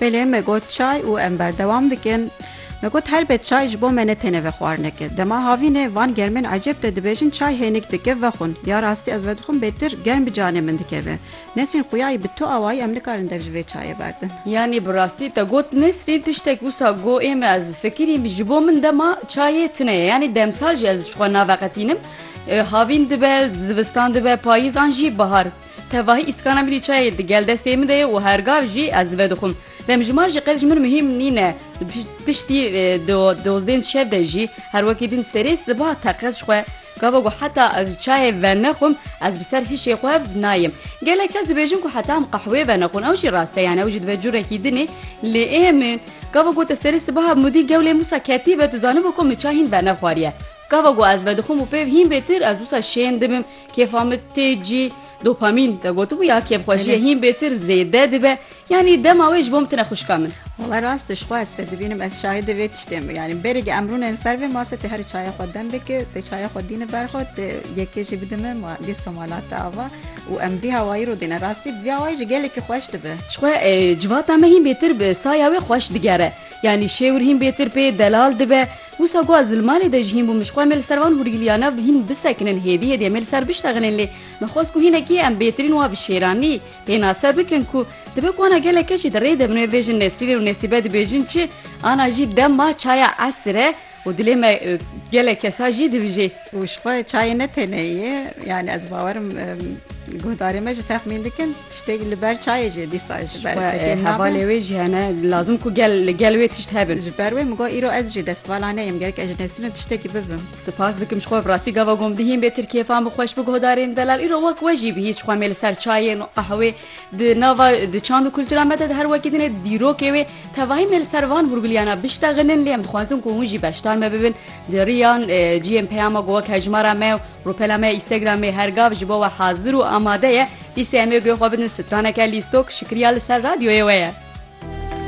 Belê me got çay û em berdewam dikin. Me got helbet çay ji bo me ne têne vexwarinek e. Dema havînê van germên ecêb de dibêjin çay hênik dike vexwin. Ya rastî ez vedixwim bêtir germ bi canê min dikeve. Nesrîn xûyayî bi tu awayî em nikarin dev ji vê çayê berdin. Yanî bi rastî te got Nesrîn tiştek wisa got ê me ez fikirîm ji bo min dema çayê tune ye. Yanî demsal jî ez ji xwe naveqetînim. Havîn dibe, zivistan dibe, payîz an jî bihar. Tevahî îskana min jî çayê di gel destê min de ye û her gav jî ez vedixwim. Demjimar jî qet ji min muhîm nîne. Piştî di dozdên şev de jî her wekî din serê siba teqez ji xwe gava ku heta ez çayê venexwim ez bi ser hişê xwe nayêm. Gelek kes dibêjin ku heta em qehwê venexwin ew jî rast e yan ew jî dibe curekî din ê lê ê min gava ku te serê siba hemûdî gewlê min wisa ketîbe tu zanibû ku min çay hîn venexwariye. Gava ku ez vedixwim û pêv hîn bê tir ez wisa şên dibim. Kêfa min tê cî dopamîn te gotibû ya kêfxwejiye hîn bêtir zêde dibe yanî dema wê ji bo min tune xwişka min. Wala rast tu ji xwe ez te dibînim ez şahidê vê tiştê me yanî berê em rûnên ser vê masê tu herî çaya xwe dem bike tu çaya xwe dînî ber xwe tu yekê jî bide min ma dîsa ma late ava û em vî hawayî rû dîne rastî bi vî hawayî jî gelekî xweş dibe. Ji xwe civata me hîn bêtir bi saya wê xweş digere yanî şêwir hîn bêtir pê delal dibe. Wisa ku ez li malê de ji hîn bûm ji xwe em ê li ser van hûrgiliyane bi hîn bisekinin hêdî hêdî em ê li ser biştexinin lê min xwest ku hînekî em bêtirîn wa bi şêranî pênase bikin ku dibe ku ana gelek keç jî di rê de min wê bêjin Nesrînê û Nesîbe dibêjin çi ana jî dema çaya esir e û dilê me gelek kesa jî dibijê. Û ji xwe çayê ne têne ye. Yanî ez bawer im guhdarê me jî texmîn dikin tiştêk li ber çayê jî dîsa ji ber hevalê wê jî hene lazim ku gel li gel wê tişt hebin. Ji ber wê min got îro ez jî destvala neyim gerek ez ji Nesrîn re tiştekî bibim. Sipas dikim ji xwe bi rastî gava gom dihîn bê tirkî hêfan bi xweş bi guhdarên delal îro wek we jî bihîst ji xwe mê li ser çayên û qehwê Di nava di çand û kultura me de di her wekî din e dîrokê wê. Tevahî me li ser van hûrguliyana biştexinin lê em dixwazin ku hûn jî beşdar me bibin di riyan ciyên peyama ku wek hejmara me û rûpela me ya Îstegramê her gav ji bo we hazir û amade ye. Dîsê em ê guhê xwe bidin straneke lîstok şikriya li ser radyoyê we ye.